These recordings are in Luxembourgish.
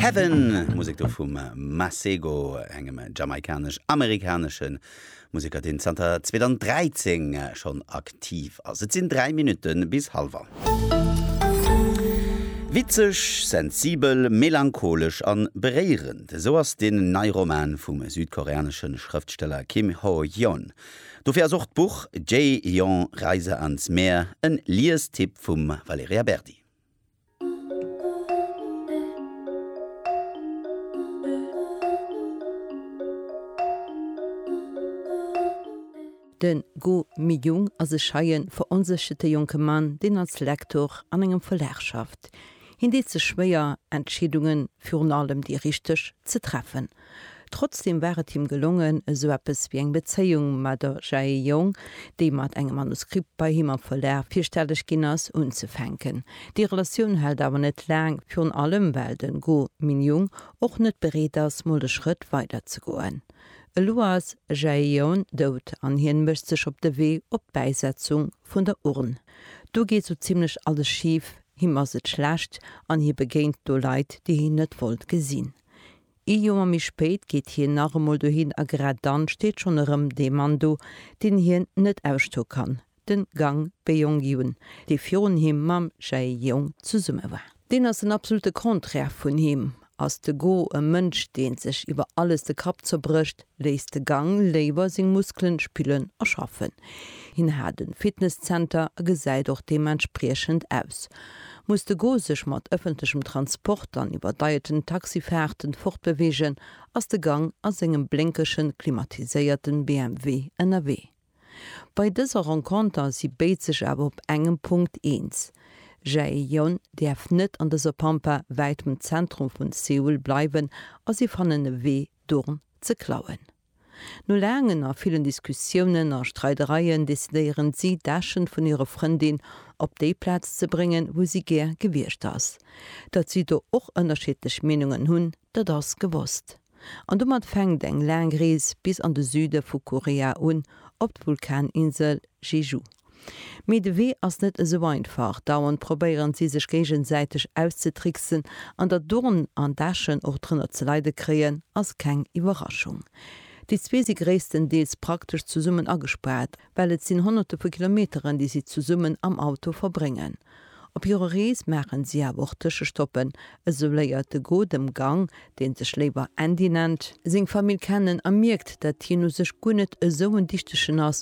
Heaven, Musek do vum Masego, engem jamaikanesch-amerikanesche Museker, deen zanter 2013 schonn aktiv ass. Et sinn 3 Minutte bis hallef an. Witzeg, sensibel, melancholesch a beréierend, esou ass den neie Roman vum südkoreanesche Schrëftsteller Kim Ho-yeon. Dofir ass och d'Buch Jae-young, Reise ans Meer en Liestipp vum Valerija Berdi. De Go Mi-young ass e scheien, veronsécherte jonke Mann, deen als Lektor an engem Verlag schafft. Hien deet sech schwéier, Entscheedungen, virun allem déi richteg, ze treffen. Trotzdem war et him gelongen, esou eppes wéi eng Bezéiung mat der Jae Young, déi mat engem Manuskript bei him am Verlag virstelleg ginn ass, unzefänken. Déi Relatioun hält awer net laang, virun allem well den Go Min-young och net bereet ass, mol de Schrëtt weiderzegoen. Elo ass Jae Young dout an hien mécht sech op de Wee op d'Bäisetzung vun der Urn. Do geet sou zimmlech alles schif, him ass et schlecht an hie begéint do Leit, déi hien net wollt gesinn. Ee Joer méi spéit geet hien nach emol dohin a grad dann steet schonn erëm dee Mann do, deen hien net ausstoe kann, de Gang Beong-Hyun, dee virun him mam Jae-Young zesumme war. Deen ass den absolute Contraire vun him. Ass de Go e Mënsch, dee sech iwwer alles de Kapp zerbrécht? Léisst de Gang léiwer seng Muskelen spillen a schaffen. Hien hat en Fitness-Zenter a gesäit och deementspriechend aus. Muss de Go sech mat ëffentlechem Transport an iwwerdeierten Taxifaarten fortbeweegen, ass de Gang a sengem blénkegen, klimatiséierten BMW ënnerwee. Bei dëser Renconter si béid sech awer op engem Punkt eens, Jaejeon däerf net an dëser Pampa wäit vum Zentrum vun Seoul bleiwen a si fannen e Wee, D'Urn ze klauen. No laangen a villen Diskussiounen a Streidereien decidéieren si, d'Äschen vun hirer Frëndin op déi Plaz ze bréngen, wou si gär gewiescht ass. Datt si do och ënnerschiddlech Meenungen hunn, dat ass gewosst. An domat fänkt eng laang Rees bis an de Süde vu Korea un, op d'Vulkaninsel Jeju. Mee de Wee ass net esou einfach. Dauernd probéieren si sech géigesäiteg auszetricksen. An datt Dorn an Daschen och drënner ze leide kréien, ass keng Iwwerraschung. Déi zwee si gréisstendeels praktesch zesummen agespaart, well et sinn honnerte vu Kilometeren, déi si zesummen am Auto verbréngen. Op hirer Rees maachen si awer och Tëschestoppen, esou léiert de Go dem Gang, dee sech léiwer Andy nennt, seng Famill kennen a mierkt, datt hien u sech guer net esou en Dichtegen ass,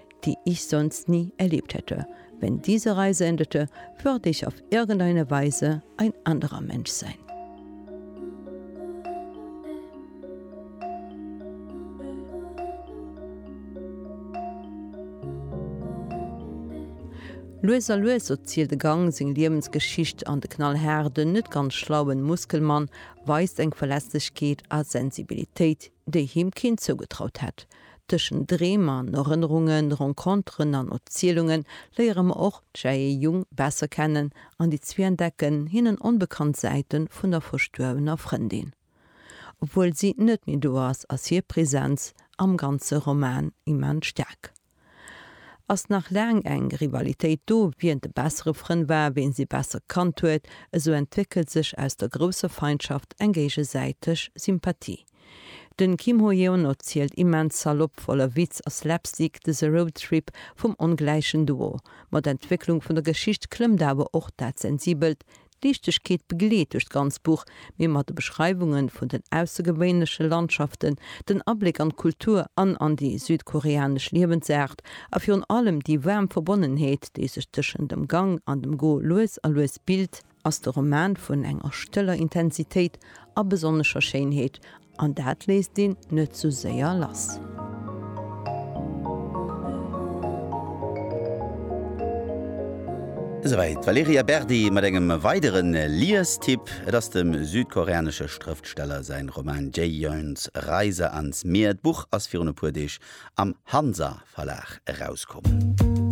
die ich sonst nie erlebt hätte, wenn diese Reise endete, würde ich auf irgendeine Weise ein anderer Mensch sein. Lues a lues erzielt de Gang seng Liewensgeschicht an de knallhaarden, net ganz schlauen Muskelmann weist eng Verletzlechkeet a Sensibilitéit, déi him keen zougetraut hätt. Tëschent Dreem an Erënnerungen, Renconteren an Erzielunge léiere mer och d'Jae Jung besser kennen an déi zwee entdecken hinnen onbekannt Säite vun der verstuerwener Frëndin. Obwuel si net méi do ass, ass hir Presenz am ganze Roman immens staark. Ass nach laang eng Rivalitéit do, wien de bessere Frënd war, wien si besser kannt huet, esou entwéckelt sech aus der grousser Feindschaft eng géigesäiteg Sympathie. Den Kim Ho-yeon erzielt immens salopp, voller Witz a Slapstick, dëse Roadtrip vum ongläichen Duo. Mat der Entwécklung vun der Geschicht klëmmt awer och dat Sensibelt. D'Liichtegkeet begleet duerch d'ganz Buch, mee mat de Beschreiwungen vun den aussergewéinleche Landschaften, den Abléck an d'Kultur an an déi südkoreanesch Liewensaart a virun allem déi waarm Verbonnenheet, déi sech tëschent dem Gang an dem Go lues a lues bilt, ass de Roman vun enger stëller Intensitéit a besonnescher Schéinheet, an dat léisst een net sou séier lass. Esouwäit d'Valerija Berdi mat engem weidere Liestipp. Et ass dem südkoreanesche Schrëftsteller säi Roman Jaehyuns Reise ans Meer. D'Buch ass virun e puer Deeg am Hansa Verlag erauskomm.